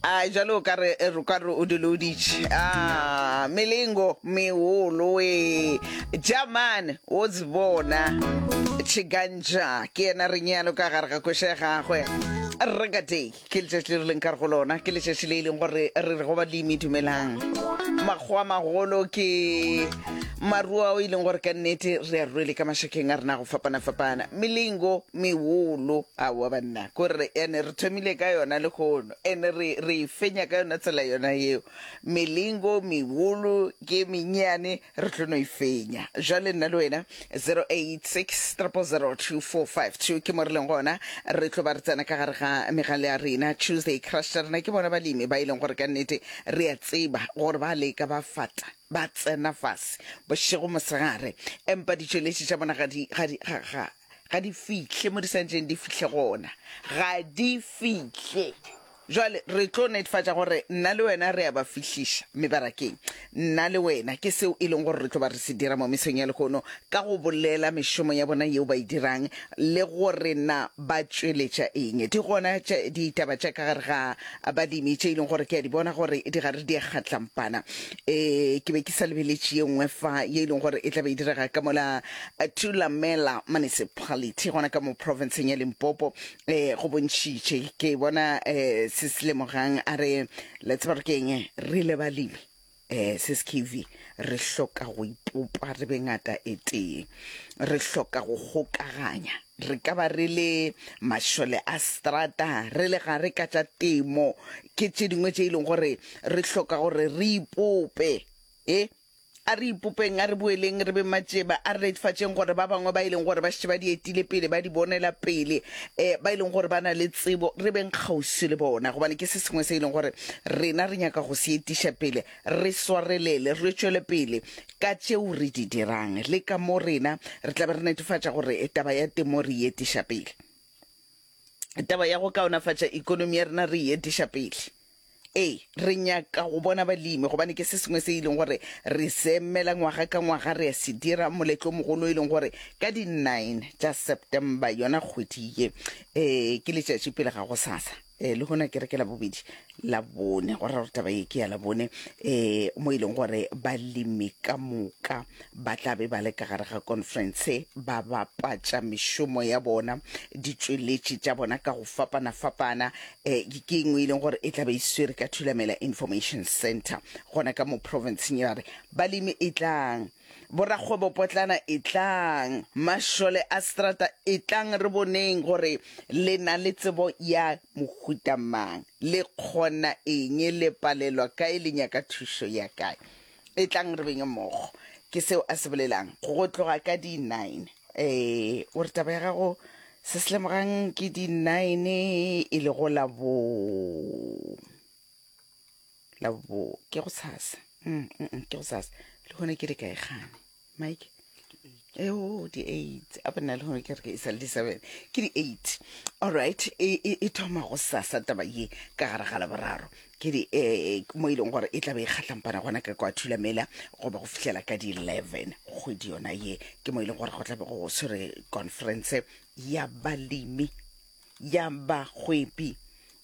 a jalo o kare eh, o kare o diloditše a melengo meolo e jaman o tsibona tšhigantša ke yena re nyalo ka gare ga koša ya gagwe regatei ke letšatši le re leng kare go lona ke letšatši le e leng gore re re go balemi dumelang makgowa magolo ke maruo ao e leng gore ka nnete re a ruele ka mašakeng a rena go fapana-fapana melengo meolo Aowa banna, ko re, and re thomile ka yona lehono, and re, re e fenya ka yona tsela yona yeo. Melingo, meholo, ke e menyeane, re tlo no e fenya. Bjale nna le wena, 0860002452, ke mo re leng gona, re tlo ba re tsena ka gare ga megale ya rena, Tuesday Crush tša rena. Ke bona balemi ba e leng gore ka nnete re a tseba gore ba leka, ba fata, ba tsena fase, bošego, mosegare, empa ditšweletši tša bona ga di, ga di, ga, ga, ga di fihle mo di santšeng di fihle gona ga di fihle jwale re tlo netefatša gore nna le wena re a ba fihliša mebarakeng nna le wena ke seo e leng gore re tlo ba re se dira mo mesong ya lehono ka go bolela mešomo ya bona yeo ba e dirang le gore na ba tšweletša eng di gona ditaba tša ka gare ga balemi tše e leng gore ke a di bona gore di gare di a kgatlampana eh ke be ke sa lebeletše ye nngwe fa ye e leng gore e tla be e direga ka mola eh, tulamela municipality gona ka mo provinceng ya limpopo eh go bontšhitše ke bona eh se se lemogang a re le tseba gore ke eng re le balemi eh se se kv re hloka go ipopa re be ngata e tee re hloka go kgokaganya Re ka ba re le mašole a strata, re le gare ka tša temo, ke tše dingwe tše e leng gore re hloka gore re ipope. E, a re ipopeng, a re boeleng re be matšeba, a re reetfatšeng gore ba bangwe ba e leng gore ba šetše ba di etile pele, ba di bonela pele, um ba e leng gore ba na le tsebo, re beng kgauswi le bona, gobane ke se sengwe se e leng gore rena re nyaka go se etiša pele. Re swarelele, re tšwele pele ka tšeo re di dirang le ka mo rena re tla be re netefatša gore taba ya temo re e etiša pele. Taba ya go kaonafatša ekonomi ya rena re e etiša pele. Ee, re nyaka go bona balemi gobane ke se sengwe se e leng gore re se emela ngwaga ka ngwaga. Re a se dira moletlo o mogolo e leng gore ka di 9 tša September, yona kgwedi ye, ee, ke letšatši pele ga gosasa. um le gona kereke la bobedi la bone go ra gore taba ye ke ya la bone um mo e leng gore balemi ka moka ba tla be ba le ka gare ga conference ba bapatša mešomo ya bona ditšweletši tša bona ka go fapana-fapana um ke engwe e leng gore e tla be e swere ka thulamela information center gona ka mo provinceng ya re balemi e tlang Borakgwebopotlana etlang, mašole a seterata etlang re boneng gore le na le tsebo ya mohuta mang, le kgona eng, le palelwa kae, le nyaka thušo ya kae. Etlang re benge mmogo, ke seo a se bolelang. Go tloga ka di nine, ee, o re taba ya gago se se lemogang ke di nine e lego la bo. la bo ke go sasa mm, mm, mm, ke go sasa le gone ke le kae gane mike eo di eight a bona le gone ke re ke e sale di seven ke di eight allright e, e, e thoma go sasa taba ye ka gare ga laboraro ke di eh, mo e leng gore e tlabe e kgatlampana gona ka kwa thulamela goba go fihlela ka di eleven kgwedi yona ye ke mo e leng gore go tlabe go swere conference ya balemi ya bagwebi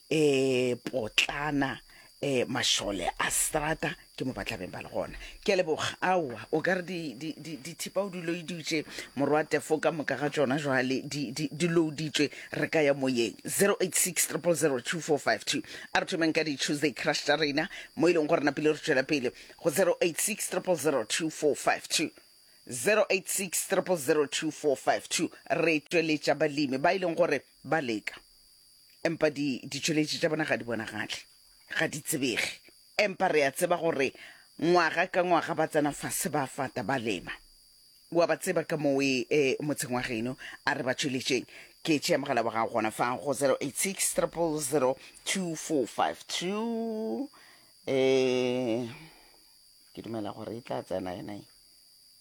E potlana e mašole a strata ke mo ba tlabeng ba le gona ke a leboga aowa o ka re di- di- di- dithipa o di loiditše morwa tefo ka moka ga tšona jwale di- di di louditšwe re ka ya moyeng 086 002452 a re thomeng ka di-tuesday crush tša rena mo e leng gore napile re tšwela pele go 086 002452 086 002452 re tšweletša balemi ba e leng gore Ba leka, empa di, ditšweletši tša bona ga di bonagale, ga di tsebege. Empa re a tseba gore ngwaga ka ngwaga ba tsena fase ba fata, ba lema. Wa ba tseba ka mowe e, motseng wa geno, a re ba tšweletšeng. Ke tšea mogala wa gago gona fa go 086 000 2452. Eh, ke dumela gore e tla tsena yona e.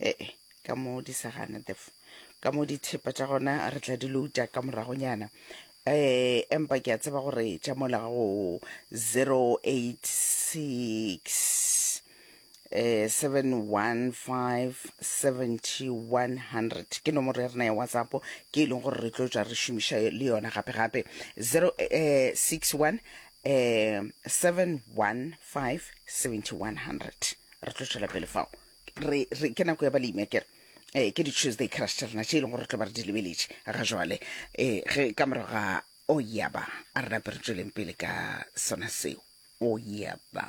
ee ka mo di sa gana def ka mo dithepa tša gona re tla di louta ka moragonyana um empa ke a tseba gore tša mola go 086 eh 715 ke nomoro ya rena ya whatsapp ke e leng gore re tlo tswa re šomiša le yona gape gape 061 eh 715 re tlo tšwela pele fao re, re ke nako ya balemi a kere eh ke di-tuesday crush tša rena tše e leng gore re tlo ba re di lebeletše ga jwale eh ge ka morago ga o yaba a re nape re tsweleng pele ka sona seo o yaba